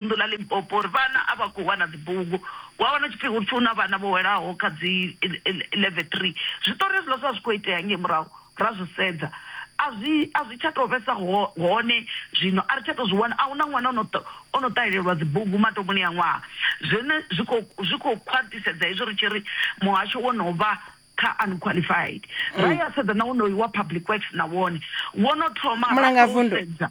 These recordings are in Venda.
vunḓu ḽa Limpopo uri vhana a vha khou wana dzibugu. Wa wana hu tshi pfi hu hu na vhana vho welaho kha dzi level three. Zwiṱori hezwiḽa zwa zwi khou itea ngei murahu ra zwi sedza a zwi a zwi tsha tou vhesa hone zwino a ri tsha tou zwi wana. A hu na ṅwana o no o no ṱahelelwa dzibugu mathomoni a ṅwaha. Zwone zwi khou zwi khou khwaṱhisedza hezwi ri tshi ri muhasho wo no vha kha unqualified. Ra ya sedza na wonoyu wa public works na wone wo no thoma ra sedza.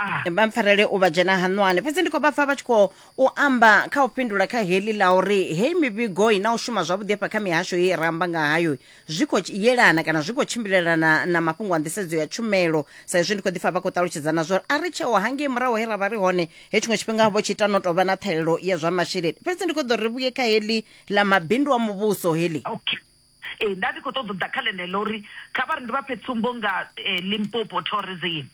Ah. vha mpfarele u vha dzhena haṋwani fhedzi ndi khou vha pfa vha tshi khou u amba kha u fhindula kha heḽi ḽa uri heyi mivhigo i na u shuma zwavhuḓi hafha kha mihasho ye ra amba nga hayo zwi khou tshi- yelana kana zwi khou tshimbilelana na mafhungo a nḓisedzo ya tshumelo sa izwi ndi khou ḓifha vha khou ṱalutshedzana zwa uri a ri tsheo hangei murahu he ra vha ri hone he tshiṅwe tshifhinga vho tshi ita no tou vha na ṱhahelelo ya zwa masheleni fhedzi ndi khou ḓo ri vhuye kha heḽi ḽa mabindu a muvhuso heḽi okay Ee, nda ndi khou ṱoḓa u ḓa kha ḽeneḽo uri kha vha ri ndi vha fhe tsumbo nga eh, Limpopo Tourism.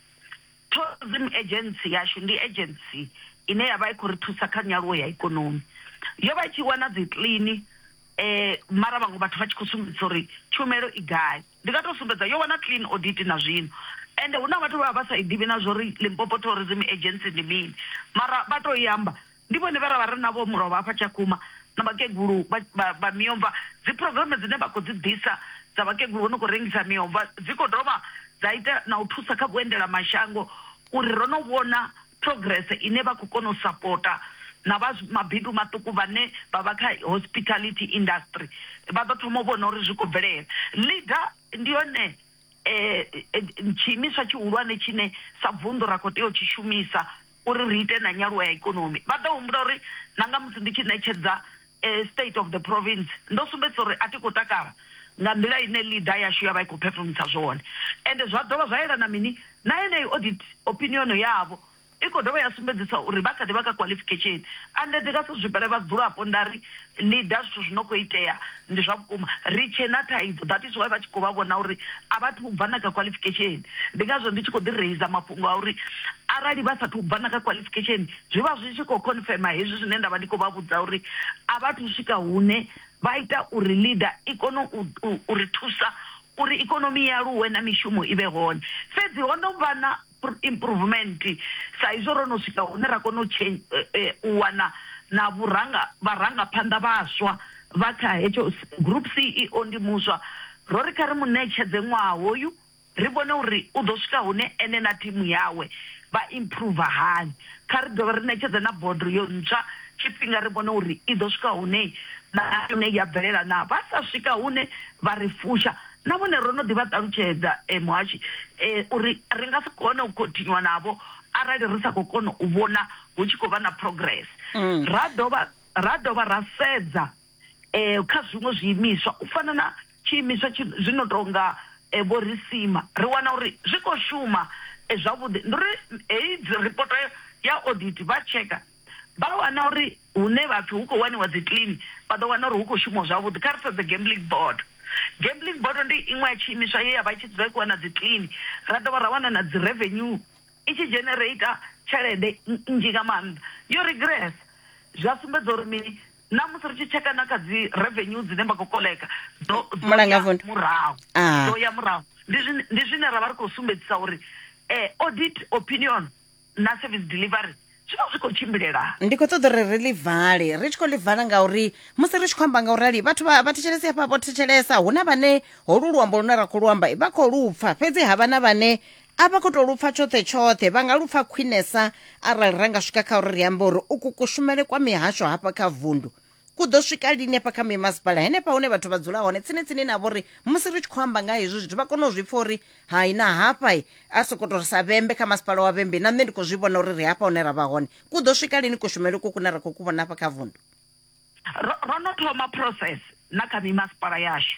Tourism Agency yashu ndi agency ine ya vha i khou ri thusa kha nyaluwo ya ikonomi. Yo vha i tshi wana dzi kiḽini eh, mara vhaṅwe vhathu vha tshi khou sumbedzisa uri tshumelo i gai. Ndi nga tou sumbedza yo wana clean audit na zwino. Ende hu na vhathu vha vha vha sa i ḓivhi na zwo uri Limpopo Tourism Agency ndi mini, mara vha tou i amba. Ndi vhone vhe ra vha ri navho mulovha hafha Tshakhuma na vhakegulu vha miomva. Dziphurogireme dzine vha khou dzi ḓisa dza vhakegulu vho no khou rengisa miomva dzi khou dovha dza ita na u thusa kha vhuendelamashango uri ro no vhona phurogirese ine vha khou kona u sapota na vha mabindu maṱuku vhane vha vha kha hospitality industry vha ḓo thoma u vhona uri zwi khou bvelela. LEADER ndi yone tshiimiswa tshihulwane tshine sa vunḓu ra khou tea u tshi shumisa. uri ri ite na nyaluwo ya ikonomi. Vha ḓo humbula uri na nga musi ndi tshi ṋetshedza State of the Province, ndo sumbedzisa uri a thi khou takala nga nḓila ine leader yashu ya vha i khou phefumisa zwone. Ende zwa dovha zwa yelana mini na yeneyi audit opinion yavho, i khou dovha ya sumbedzisa uri vha kha ḓi vha kha qualification. Ande ndi nga si zwifhele vhadzulapo nda ri Leader, zwithu zwi no khou itea ndi zwa vhukuma, ri tshe na thaidzo that is why vha tshi khou vha vhona uri a vha thu bva na kha qualification. Ndi ngazwo ndi tshi khou ḓi raiser mafhungo a uri arali vha sa thu bva na kha qualification zwi vha zwi tshi khou confirmer hezwi zwine nda vha ndi khou vha vhudza uri a vha thu swika hune vha ita uri Leader i kone u, u, u ri thusa uri ikonomi i aluwe na mishumo i vhe hone. Fhedzi ho no vha na. improvement sa izwo ro no swika hune ra kona u eh, eh, u wana na vhuranga vharangaphanḓa vhaswa vha kha hetsho group ceo ndi muswa ro ri kha ri mu ṋetshedze ṅwaha hoyu ri vhone uri u ḓo swika hune ene na thimu yawe vha improve hani kha ri dovhe ri ṋetshedze na bodo yo ntswa tshifhinga ri vhone uri i ḓo swika hune na yone ya bvelela na vha sa swika hune vha ri fusha Na vhone ro no ḓi vha ṱalutshedza, e, Muhashi, e, uri ri nga si kone u khonthinyua navho arali ri sa khou kona u vhona hu tshi khou vha na progress. Ra dovha ra dovha ra sedza e, kha zwiṅwe zwiimiswa u fana na tshiimiswa tshi zwi no tou nga e, Vho Risima, ri wana uri zwi khou shuma e, zwavhuḓi. Ndi uri heyi ripoto ya audit vha tsheka vha wana uri hune vha pfi hu khou waniwa dzi clean vha ḓo wana uri hu khou shumiwa zwavhuḓi. Kha ri sedze gambling board, gambling board ndi iṅwe ya tshiimiswa ye ya vha i tshi dzula i khou wana dzi clean ra dovha ra wana na dzi revenue i tshi genereita tshelede nnzhi nga maanḓa. Yo regress zwa sumbedza uri mini na musi ri tshi tsheka na kha dzi revenue dzine vha khou koḽeka dzo ya murahu ah. dzo ya murahu ndi zwine ra vha ri khou sumbedzisa uri eh, audit opinion na service delivery zwi vha zwi khou tshimbilela ndi khou ṱoḓa uri ri ḽi vale ri tshi khou ḽi vala ngauri musi ri tshi khou amba nga u rali vhathu vha thetshelesi hafha vho thetshelesa hu na vhane holu luambo lune ra khou lu amba vha khou lupfa fhedzi ha vha na vhane a vha khou tou lupfa tshoṱhe tshoṱhe vha nga lupfa khwinesa arali ra nga swika kha uri ri ambe uri uku kushumele kwa mihasho hafha kha vundu ku ḓo swika lini hafha kha mimasipala henefha hune vhathu vha dzula hone tsini tsini navho uri musi ri tshi khou amba nga hezwi zwithu vha kone u zwi pfa uri hai na hafha i a soko to ri sa vhembe kha masipala wa vhembe na nṋe ndi khou zwi vhona uri ri hafha hune ra vha hone ku ḓo swika lini kushumele uku kune ra khou ku vhona hafha kha vundu ro ro no thoma process na kha mimasipala yashu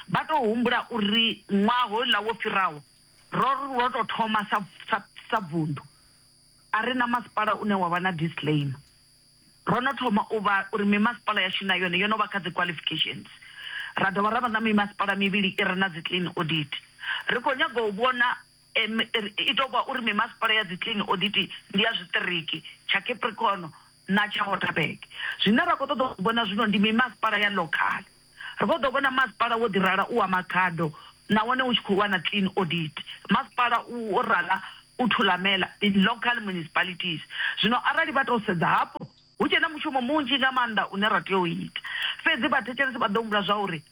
vha tou humbula uri ṅwaha houḽa wo fhiraho ro ro tou thoma sa sa sa vundu a ri na masipala une wa vha na disclaimer Ro no thoma u vha uri mimasipala yashu na yone yo no vha kha dziqualifications. Ra dovha ra vha na mimasipala mivhili i re na dziclean audit. Ri khou nyaga u vhona i tou vha uri mimasipala ya dziclean audit ndi ya zwiṱiriki tsha Capricorn na tsha Waterberg. Zwine ra khou ṱoḓa u zwi vhona zwino ndi mimasipala ya ḽokhaḽa. Ri vho ḓo vhona masipala wo ḓi rala u wa magado nahone u tshi khou lwa na clean audit. Masipala u wo rala u thulamela in local municipalities. Zwino arali vha tou sedza hafho, hu tshe na mushumo munzhi nga maanḓa une ra tea u ita. Fhedzi vhathetshelesi vha ḓo humbula zwa uri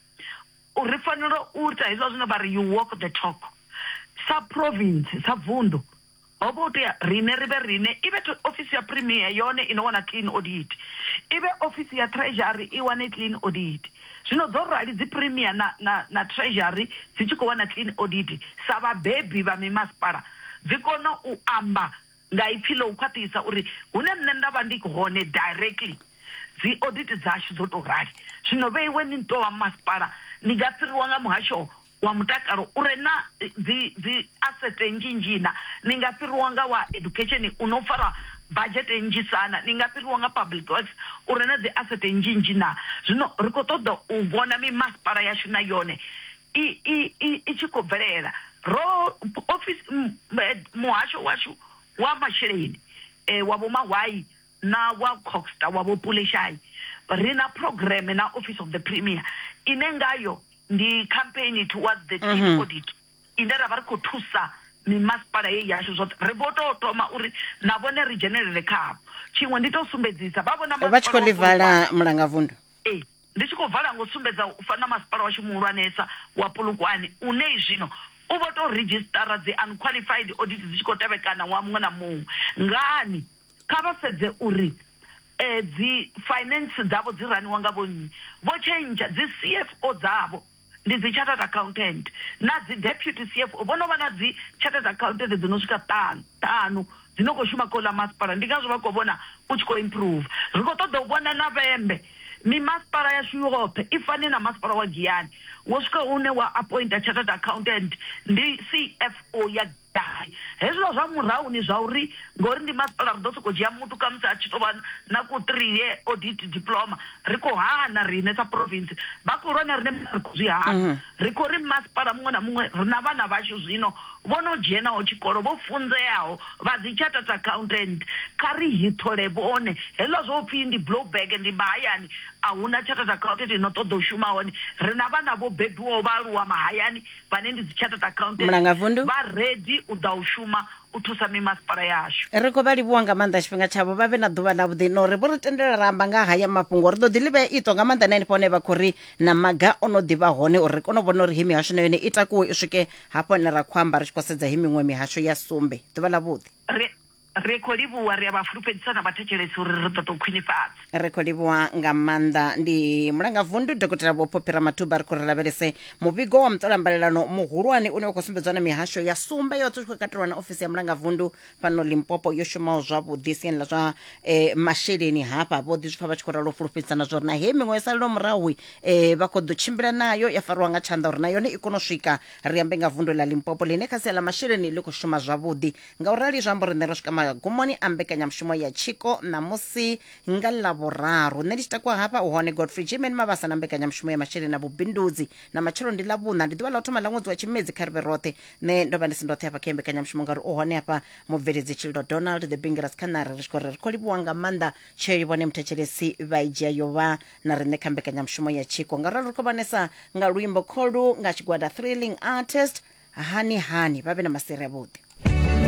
ri fanela u ita hezwiḽa zwine vha ri you walk the talk sa province, sa vunḓu. ho vha u tea riṋe ri vhe riṋe, i vhe ofisi ya Premier yone i no wana clean audit, i vhe ofisi ya Treasury i wane clean audit. Zwino dzo rali dzi Premier na, na, na Treasury dzi tshi khou wana clean audit, sa vhabebi vha mimasipala dzi kona u amba nga ipfi ḽa u khwaṱhisa uri hune nṋe nda vha ndi hone directly dzi audit dzashu dzo tou rali. Zwino vheiwe ni tou vha masipala ni nga fhiriwa nga muhasho wa mutakalo u re na dzi dzi asset nnzhi nnzhi na ni nga fhiriwa nga wa education u no fara budget nnzhi sana ni nga fhiriwa nga public works u re na dzi asset nnzhi nnzhi na zwino ri kho ṱoḓa u vhona mi masipala yashu na yone i i i tshi khou bvelela ro office muhasho washu wa masheleni eh, wa vhomahwai na wa Coxta wa Vho Pule Shayi, ri na phurogireme na Office of the Premier ine ngayo ndi campaign towards the team audit ine ra vha ri khou thusa mimasipala ye yashu zwoṱhe ri vho tou thoma uri na vhone ri dzhenelele khavho tshiṅwe ndi tou sumbedzisa vha vhona vha tshi khou ḽi vala mulangavundu ee ndi tshi khou vala ngo sumbedza u fana masipala washu muhulwanesa wa pulukwane une zwino u vho tou redzhisitara dzi unqualified audit dzi tshi khou tevhekana ṅwaha muṅwe na muṅwe ngani Kha vha sedze uri dzi finance dzavho dzi raniwa nga vho nnyi, vho tshentsha dzi CFO dzavho ndi dzi chartered accountant na dzi deputy CFO vho no vha na dzi chartered accountant dzi no swika ṱanu ṱhanu dzi no kho shuma kha uḽa masipala ndi ngazwo vha kho vhona u tshi kho improve. Ri kho ṱoḓa u vhona na vhembe mi masipala yashu yoṱhe i fane na masipala wa Giyani wo swika hune wa appointer chartered accountant ndi CFO ya. Gai. Hezwiḽa zwa murahu ni zwa uri ngori ndi masipala ri ḓo sokou dzhia muthu khamusi a tshi tou vha na ku three year audit diploma, ri khou hana riṋe sa province, vha khou lwa na riṋe mara ri khou zwi hana. Ri khou ri masipala muṅwe na muṅwe ri na vhana vhashu zwino vho no dzhenaho tshikolo, vho funzeaho, vha dzi chartered accountant, kha ri hithole vhone. Hezwiḽa zwa u pfi ndi blow bag ndi mahayani a hu na chartered accountant i no ṱoḓa u shuma hone, ri na vhana vho bebiwaho vha aluwa mahayani, vhane ndi dzi chartered accountant Mulangavundu. vha ready u ḓa u shuma u thusa mimasipala yashu ri khou vha livhuwa nga maanḓa tshifhinga tshavho vha vhe na ḓuvha ḽa vhuḓi no ri vho ri tendela ra amba nga haya mafhungo ri ḓo ḓi livhea ito nga maanḓa na henefho hone vha khou ri na maga o no ḓivha hone uri ri kone u vhona uri he mihasho na yone i takuwe i swike hafho hone ra khou amba ri tshi khou sedza he miṅwe mihasho ya sumbe ḓuvha ḽa vhuḓi ri Ri khou livhuwa, ri a vha fulufhedzisa na vhathetshelesi uri ri ṱoḓa u khwinifhadza. Ri khou livhuwa nga maanḓa. Ndi Mulangavundu Dokotela Vho Phophi Ramathuba. Ri khou ri lavhelese muvhigo wa muṱolambalelano muhulwane une wa khou sumbedzwa na mihasho ya sumbe yoṱhe u tshi khou katelwa na ofisi ya Mulangavundu fhano Limpopo yo shumaho zwavhuḓi siani ḽa zwa eh, masheleni hafha vho ḓi zwipfa vha tshi khou ralo fulufhedzisana zwa uri na hei miṅwe yo salelaho murahu eh, vha khou ḓo tshimbila nayo ya fariwa nga tshanḓa uri na yone i kone u swika ri ambe nga vundu ḽa Limpopo ḽine kha sia ḽa masheleni ḽi khou shuma zwavhuḓi Nga u rali zwi amba uri nṋe ro swika magumoni a mbekanyamushumo ya tshiko ṋamusi nga ḽavhuraru nṋe ndi tshi takuwa hafha u hone godfrey jimen mavhasa na mbekanyamushumo ya masheleni na vhubindudzi na matshelo ndi ḽavhuṋa ndi ḓuvha ḽa u thoma ḽa ṅwedzi wa tshimedzi kha ri vhe roṱhe nṋe ndo vha ndi si ndoṱhe hafha kha iyi mbekanyamushumo ngauri u hone hafha mubveledzi tshililo donald the bingeras khanari ri tshi khou ri ri khou livhuwa nga maanḓa tsheo i vhone muthetshelesi vha i dzhia yo vha na riṋe kha mbekanyamushumo ya tshiko ngauralo ri khou vhanesa nga luimbo kholu nga tshigwada thrilling artist hani hani vha vhe na masiri avhuḓi